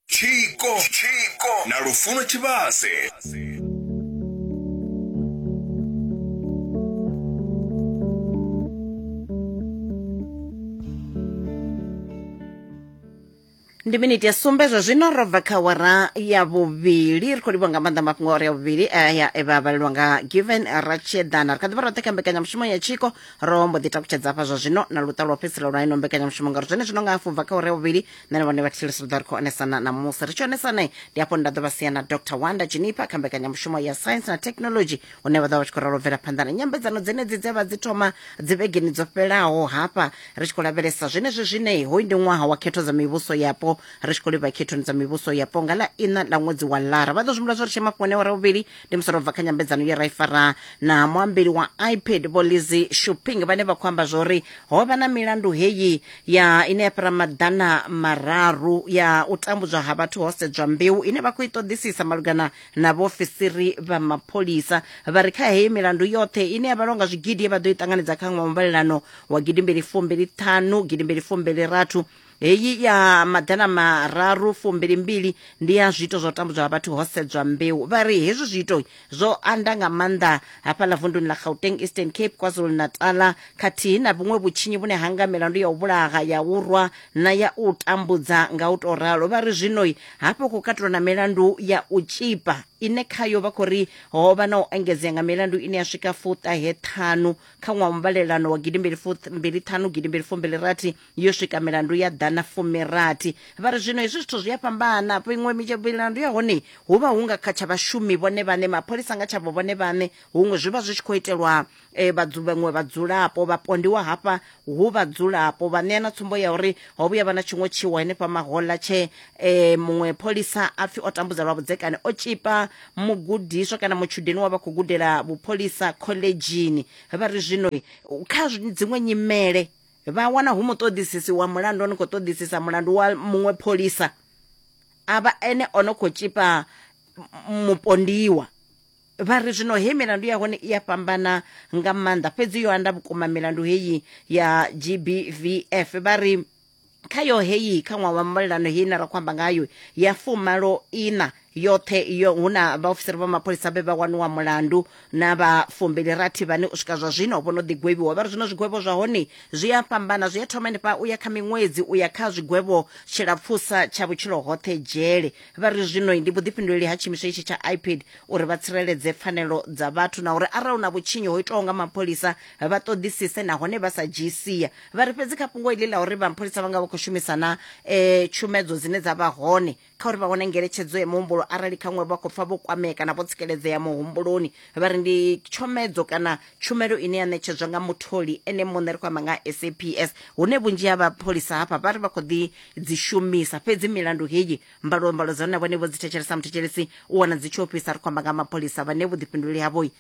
tshiko na lufuno tshivhase ndi miniti ya sumbe zwa zwino ro bva kha wara ya vhuvhili ri khou livhwa nga maanḓa mafhungo a wara ya vhuvhili aya e vha vhalelwa nga given ratshedana ri kha ḓivha roṱhe kha mbekanyamushumo ya tshiko ro mbo ḓi takutshedza hafha zwa zwino na luṱa lwa fhedzisela lwa ino mbekanyamushumo ngauri zwone zwino nga hafhu bva kha ure vhuvhili nṋe na vhone vha thilisi ri ḓo ri khou onesana na musi ri tshi onesane ndi hafho nda ḓo vha sia na dr wanda junipa kha mbekanyamushumo ya science na technology hune vha ḓo vha tshi khou ralo bvela phanḓa na nyambedzano dzenedzi dze vha dzi thoma dzi vhegeni dzo fhelaho hafha ri tshi khou lavhelesa zwenezwi zwine hoyu ndi ṅwaha wa khetho dza mivhuso yapo ri tshi khou livha khethoni dza mivhuso yapo nga ḽa ina ḽa ṅwedzi wa lara vha ḓo zwimbula zwo ri tshema fhone ure vhuvhili ndi musoro bva kha nyambedzano ye ra i fara na muambeli wa ipad vho lizi shopping vhane vha khou amba zwori ho vha na milandu heyi ya ine ya fhira maḓana mararu ya u tambudzwa ha vhathu ho sedzwa mbeu ine vha khou i ṱoḓisisa malugana na vhaofisiri vha mapholisa vha ri kha heyi milandu yoṱhe ine ya vhalwa nga zwigidi ye vha ḓo i ṱanganedza kha ṅwaha muvhalelano wa gidimbili fumbili ṱhanu gidimbili fumbili rathu heyi ya maḓana mararu fumbilimbili ndi ya zwiito zwa u tambudzwa ha vhathu ho sedzwa mbeu vha ri hezwi zwiito zwo anda nga maanḓa hafhaḽa vunduni ḽa gauteng eastern cape kwazulu natala khathihi na vhuṅwe vhutshinyi vhune ha nga milandu ya u vhulaha ya u rwa na ya u tambudza nga u tou ralo vha ri zwinoi hafho khou katelwa na milandu ya u tshipa ine khayo vha khou ri ho vha na u engedzea nga milandu ine ya swika fuṱahe ṱhanu kha ṅwaha muvhalelano wa gidimbili fumbili ṱhanu gidimbili fumbili rathi yo swika milandu ya ḓana fumirathi vha ri zwino hezwi zwithu zwi a fhambana iṅwe milandu ya hone hu vha hu nga kha tsha vhashumi vhone vhane mapholisa nga tshavho vhone vhane huṅwe zwi vha zwi tshi khou itelwa um vhaṅwe vhadzulapo vhapondiwa hafha hu vhadzulapo vha ṋea na tsumbo ya uri ho vhuya vha na tshiṅwe tshiwo henefha mahola tshe um muṅwe pholisa a pfhi o tambudza lwa vhudzekani o tshipa mugudiswa kana mutshudeni wa vha khou gudela vhupholisa khoḽedzhini vha ri zwino kha dziṅwe nyimele vha wana hu muṱoḓisisi wa mulandu o no khou ṱoḓisisa mulandu wa muṅwe pholisa a vha ene o no khou tshipa mupondiwa vha ri zwino he milandu ya hone i a fhambana nga maanḓa fhedzi yo anda vhukuma milandu heyi ya gbvf vha ri khayo heyi kha ṅwaha wa mbalelano heyi na ra khou amba ngayo ya fumalo ina yoṱhe iyo hu na vhaofisiri vha mapholisa vhe vha waniwa mulandu na vha fumbili rathi vhane u swika zwa zwino vho no ḓigwevhiwa vha ri zwino zwigwevho zwa hone zwi a fhambana zwi a thoma henefha u ya kha miṅwedzi u ya kha zwigwevho tshilapfusa tsha vhutshilo hoṱhe dzhele vha ri zwino ndi vhuḓifhinduleli ha tshiimiswa itshi tsha ipad uri vha tsireledze pfanelo dza vhathu na uri arali hu na vhutshinyi ho itwaho nga mapholisa vha ṱoḓisise nahone vha sa dzhii sia vha ri fhedzi kha fhungo iḽi ḽa uri vhapholisa vha nga vha khou shumisana um tshumedzo dzine dza vha hone kha uri vha wane ngeletshedzo ya muhumbulo arali khaṅwe vha khou pfa vho kwamea kana vho tsikeledzea muhumbuloni vha ri ndi tshomedzo kana tshumelo ine ya ṋetshedzwa nga mutholi ene muṋe ri khou amba nga saps hune vhunzhi ha vhapholisa hafha vha ri vha khou ḓi dzi shumisa fhedzi milandu heyi mbalombalo dza hone vhone vho dzi thetshelesa muthetshelesi u wana dzi tshi ofhisa ri khou amba nga mapholisa vhane vhuḓifhinduleli havho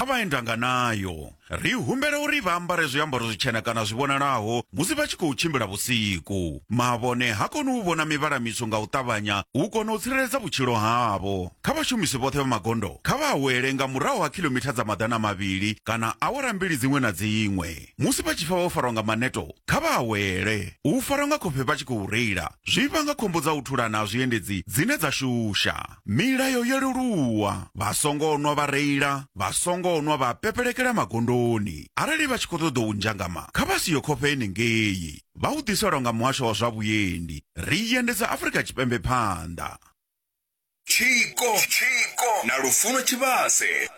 kha vhaendanga nayo. Ri humbela uri vha ambare zwiambaro zwitshena kana zwi vhonalaho musi vha tshi khou tshimbila vhusiku. Mavhone ha koni u vhona mivhala mitswu nga u ṱavhanya u kona u tsireledza vhutshilo havho. Kha vhashumisi vhoṱhe vha magondo, kha vha awele nga murahu ha khiḽomitha dza maḓana mavhili kana awara mbili dziṅwe na dziṅwe. Musi vha tshi pfa vho farwa nga maneto, kha vha awele. U farwa nga khofhe vha tshi khou reila zwi vhanga khombo dza u thulana ha zwiendedzi dzine dza shusha. Milayo yo leluwa, vha songo nwa vha reila, vha songo nwa vha pepelekela magondoni. Arali vha tshi khou ṱoḓa u nzhangama, kha vha si yo khofhe henengei. Vha u ḓiselwa nga muhasho wa zwa vhuendi. Ri i endedza Afrika Tshipembe phanḓa. Tshiko, tshiko na lufuno tshivhase.